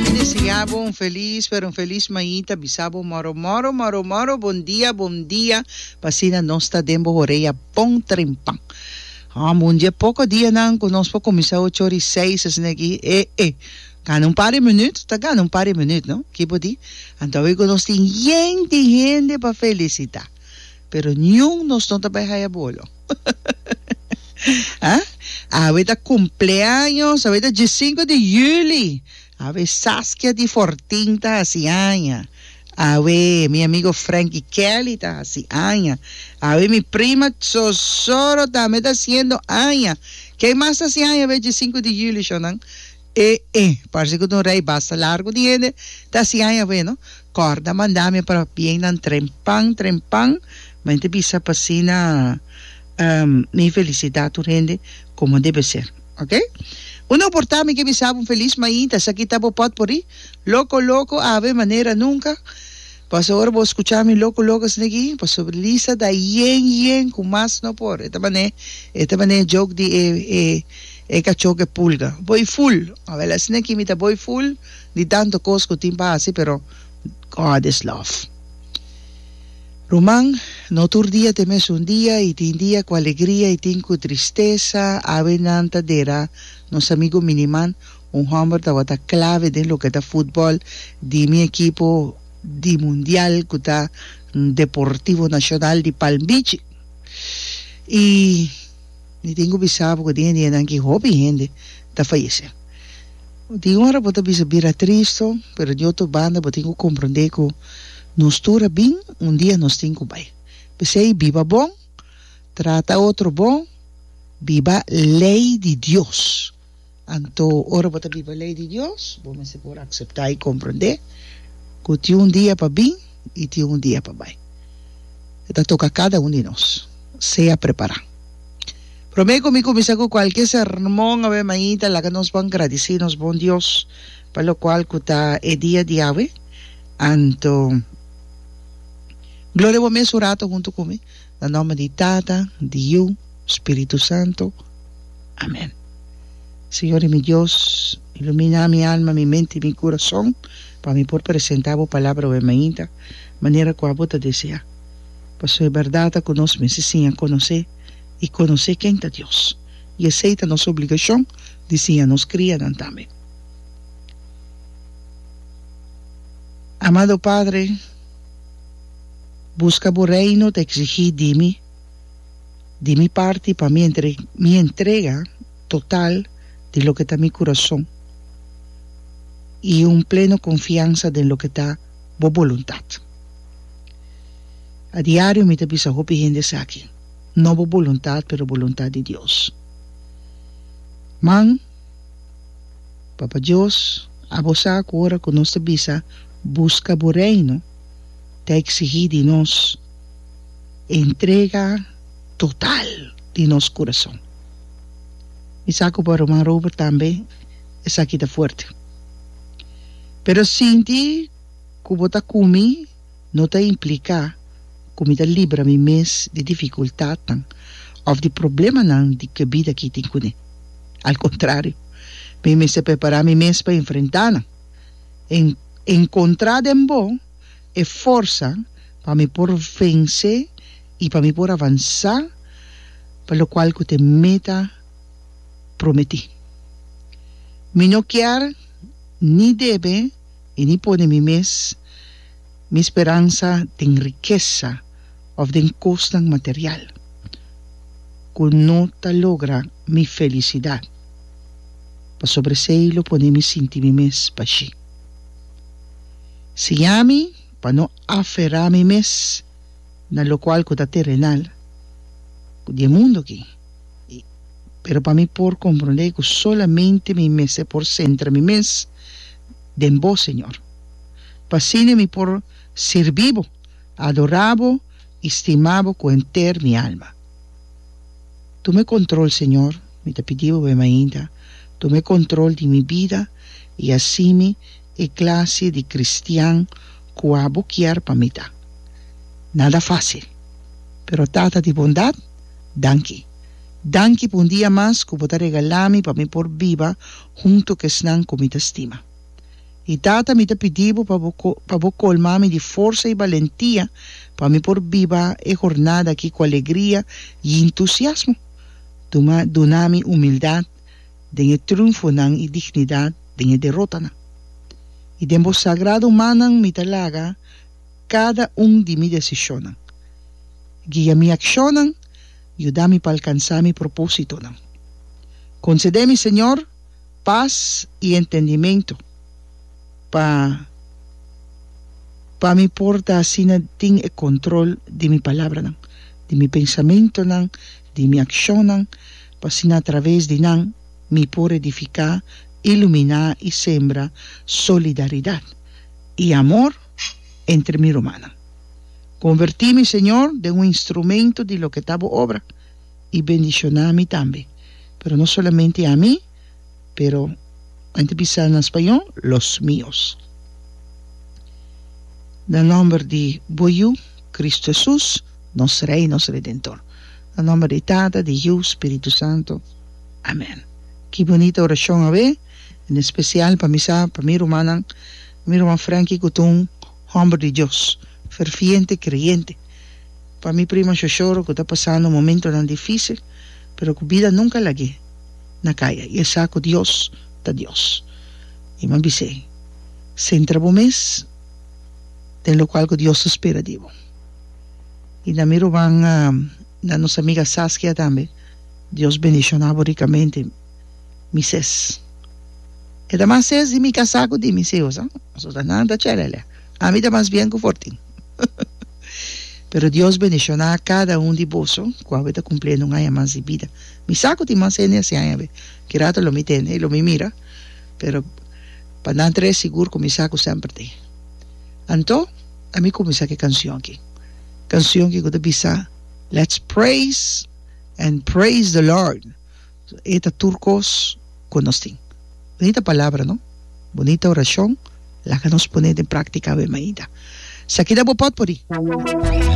Mi desea bo un felis pero un felis mañi ta bisa bo moro moro moro moro bon dia bon dia pa asina nos ta den bo horea bon trempan hom un dia poco dianan cu nos por cuminsa ocho ora y seis asina aki e e gana un par de minuut ta gana un par de minuut no kibo di anto awe cu nos tin hende hende pa felicita. Pero niun nos no ta bai haya bolo. Haa awe ta cumpleaños awe ta diesinco di juli awe Saskia di Fortin ta haci aña awe mi amigo Franky Kelly ta haci aña awe mi prima Zozoro tambe ta haciendo aña ken mas ta haci aña awe diesinco di juli shonan E e parse ku ta un rei basta largu di hende ta hasi aña bueno kòrda manda mi pa bien nan trempan trempan mane ta bisa pa asina mi felisitá tur hende komo debe ser ok un oportá mi ke bisabo un felis mainta esaki ta bo pòt por i loko loko ave manera nunka. Paso ora bo scucha mi loco loco asina aki, pasobra Lisa ta yen yen cu mas no por. E ta mane e ta mane joke di e e e cacho cu e pulga. Bo i full. Awel asina aki mi ta bo i full di tanto cos cu tin pa haci pero God is love. Ruman, no tur dia ta e mesun dia i tin dia cu alegria i tin cu tristesa. Awe nan ta dera nos amigo Miniman. Un homber tabata clave den loke ta futbol di mi ekipo di mundial ku ta Deportivo Nacional di Palm Beach i mi tin ku bisa bo ku den e dianan aki hopi hende ta fayesé. Bo tin ora bo ta bisa bira tristo pero di otro banda bo tin ku komprondé ku nos tur a bin un dia nos tin ku bai. P'esei biba bon, trata otro bon, biba lei di Dios. Anto, ora bo ta biba lei di Dios, bo mester por akseptá i komprendé ku tin un dia pa bin i tin un dia pa bai. E ta toka kada un di nos sea prepará. Promé ku mi kuminsá ku kualke sermon awe mainta, laga nos bon gradisí nos bon Dios pa lokual ku ta e dia di awe. Anto, gloria bo mes un rato huntu ku mi. Na nomber di Tata, di Yu, Spiritu Santo. Amen. Señor di mi Dios, ilumina mi alma, mi mente y mi curason pa mi por presenta bo palabra oe mainta manera cu abo ta desea. Pasobra e berdad ta cu nos mester siña conoce y conoce ken ta Dios, y esey ta nos obligacion di siña nos crianan tambe. Amado Padre. Buska bo Reino ta eksigí di mi, di mi parti pa mi entre mi entrega total di loke ta mi kurason i un pleno konfiansa den loke ta Bo boluntat. A diario mi ta bisa hopi hende esaki, no bo boluntat pero boluntat di Dios. Man, Papa Dios, abo sa ku ora ku nos ta bisa, Buska bo Reino, ta eksigí di nos entrega total di nos kurason. Mi sa ku pa ruman Robert tambe esaki ta fuerte. Pero sinti ku bo ta ku mi no ta impliká ku mi ta libra mi mes di difikultatnan òf di problemanan di ku e bida aki tin kuné. Al kontrario, mi mester prepará mi mes pa enfrentá nan. en en kontrá den bo e forsa pa mi por vensé i pa mi por avansá pa lokual ku te meta prometí. Mi no kier ni debe i ni pone mi mes mi speransa den rikesa òf den kosnan material ku no ta logra mi felisidat. pasobra esei lo pone mi sinti mi mes pashí. Siña mi pa no aferá mi mes na lokual ku ta terenal, ku di e mundu aki, i pero pa mi por komprondé ku solamente mi mester por sentra mi mes den Bo, Señor, pa asina mi por sirbi Bo, adorá Bo i stima Bo ku henter mi alma. Tum'e control Señor, mi ta pidibo Bo e mainta, tum'e control di mi bida y haci mi e clase di cristian cua Bo kier pa mi ta. Nada facil, pero Tata di bondad, danki. Danki pa un dia mas cu Bo ta regalami pa mi por biba hunto cu esnan cu mi ta stima. I Tata, mi ta pidi bo pa bo pa bo colma mi di forsa i balentia pa mi por biba e hornada aki cu alegria i entusiasmo. Duma duna mi humildad den e triunfonan i dignidad den e derotanan. I den bo sagrado mannan mi ta laga cada un di mi decisionnan. Guia mi accionnan, yuda mi pa alcansa mi propositonan. Concede mi, Señor. Pas y entendimento pa pa mi por ta asina tin e control di mi palabranan, di mi pensamentonan, di mi accionnan, pa asina a traves di nan mi por edifica, ilumina y sembra solidaridad y amor entre mi rumannan. Converti mi, Señor, den un instrumento di loke ta Bo obra. i bendishoná mi tambe, pero no solamente a mi, pero mente bisa na spañó, los míos. Na nòmber di bo Yu, Kristu Hesus, nos Rei, nos Redentor. Na nòmber di Tata, di Yu, Spiritu Santu. Amèn. Ki bunita orashon, awe! En espesial pa mi sa, pa mi rumannan, mi ruman Franky Kutun, Homber di Dios, ferviente creyente, pa mi prima Shoshoro cu ta pasando momentonan dificil, pero cu bida nunca lag'e na caya, i e sa cu Dios ta Dios. I mi a bis'e, Centra bo mes den locual cu Dios ta spera di bo. I na mi roban na nos amiga Saskia tambe, Dios bendicionabo ricamente. mi ses. E ta mas ses di mi casá cu di mi sihus, ha? Asota nan ta chelele. Ami ta mas bien cu Fortin. Pero Dios bendiciona cada un di boso cu awe ta cumpliendo un aña mas di bida. Mi sa cu tin mas hende así aña awe. Ki rato lo mi ta hende y lo mi mira, pero pa nan tres sigur cu mi sa cu semper ta hay. Anto, ami cuminsa cu e cancion aki. Cancion aki cu ta bisa, Let's praise and praise the Lord. E ta tur kos ku nos tin. Bunita palabra no? Bunita orashon? Laga nos pone den praktika awe mainta. Sakida bo pot por di.